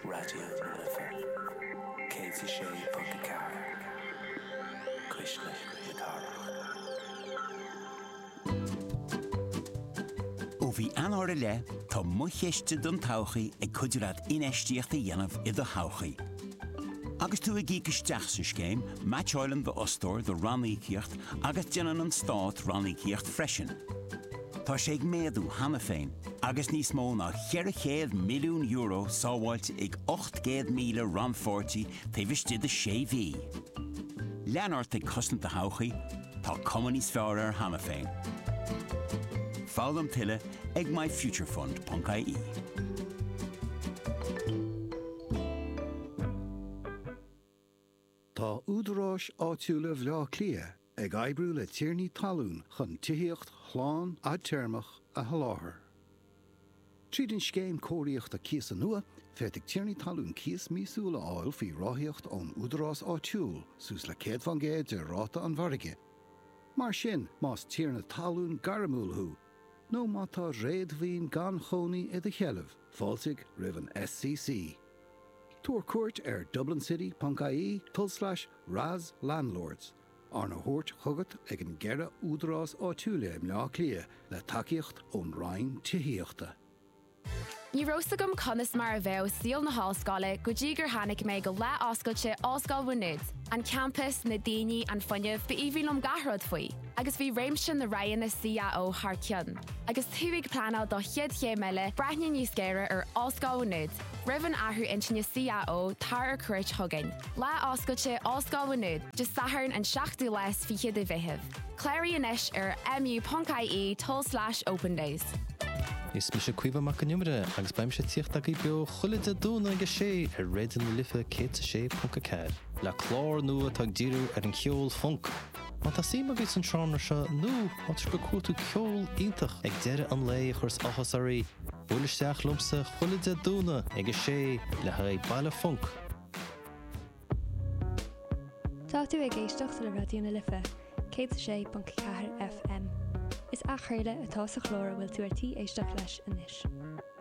Raidió na Life 106.4, cuisle na cathrach. Ó mhí Eanáir i leith, tá Mo Chiste don Todhchaí ag cuidiú leat infheistíocht a dhéanamh i do thodhchaí. Agus tú ag íoc isteach sa scéim, meaitseáileann d'fhostóir do ranníocaíocht agus déanann an Stát ranníocaíocht freisin. Tá sé ag méadú cheana féin agus níos mó ná €400 milliún sábháilte ag 800,000 rannpháirtí taobh istigh de sé mhí. Lean ort ag cosaint do thodhchaí, tá cuma níos fearr uirthi cheana féin. Foghlaim tuilleadh ag myfuturefund.ie. Tá údaráis áitiúla Bhleá Cliath ag oibriú le tiarnaí talún chun tithíocht shlán fhadtéarmach a sholáthar. Tríd an scéim cóiríochta cíosa nua, féadfaidh tiarnaí talún cíos míosúil a fháil faoi ráthaíocht ón údarás áitiúil, suas le 100 faoin gcéad de ráta an mhargaidh. Mar sin, más tiarna talún gairmiúil thú nó má tá réadmhaoin gan chónaí i do sheilbh, fáiltigh roimh an SCC. Tabhair cuairt ar dublincity.ie tulslais RAS Landlords, arna thabhairt chugat ag na ceithre údarás áitiúla i mBleá Cliath le tacaíocht ón Roinn Tithíochta. Ní raibh 's agam conas mar a bheadh saol na hollscoile go dtí gur tháinig mé go Lá Oscailte Ollscoil Mhá Nuad, an campas, na daoine, an fuinneamh, b'aoibhinn liom gach rud faoi. agus bhí réimse na roghanna CAO thar cionn, agus tú ag pleanáil do chéad chéim eile, breathnaigh níos géire ar Ollscoil Mhaigh Nuad, roimh an athrú intinne CAO, tar ar cuairt chugainn. Lá Oscailte Ollscoil Mhaigh Nuad, Dé Sathairn an 7ú lá is fiche de Mheitheamh. Cláraigh anois ar mu.ie tulslais opendays. Is mise Caoimhe Mac an Iomaire agus beidh mise ag tíocht agaibh beo chuile Dé Domhnaigh ag a sé ar Raidió na Life 106.4 le clár nua atá ag díriú ar an cheol func. Má tá suim agaibh san seánra seo nó má tá sibh ag cuartú ceol iontach ag deireadh an lae a chuireas áthas oraibh, buail isteach liomsa chuile Dé Domhnaigh ag a sé le haghaidh Baile Func! Tá tú ag éisteacht le Raidió na Life, 106.4 FM. Is athchraoladh atá sa chlár a bhfuil tú ar tí éisteacht leis anois.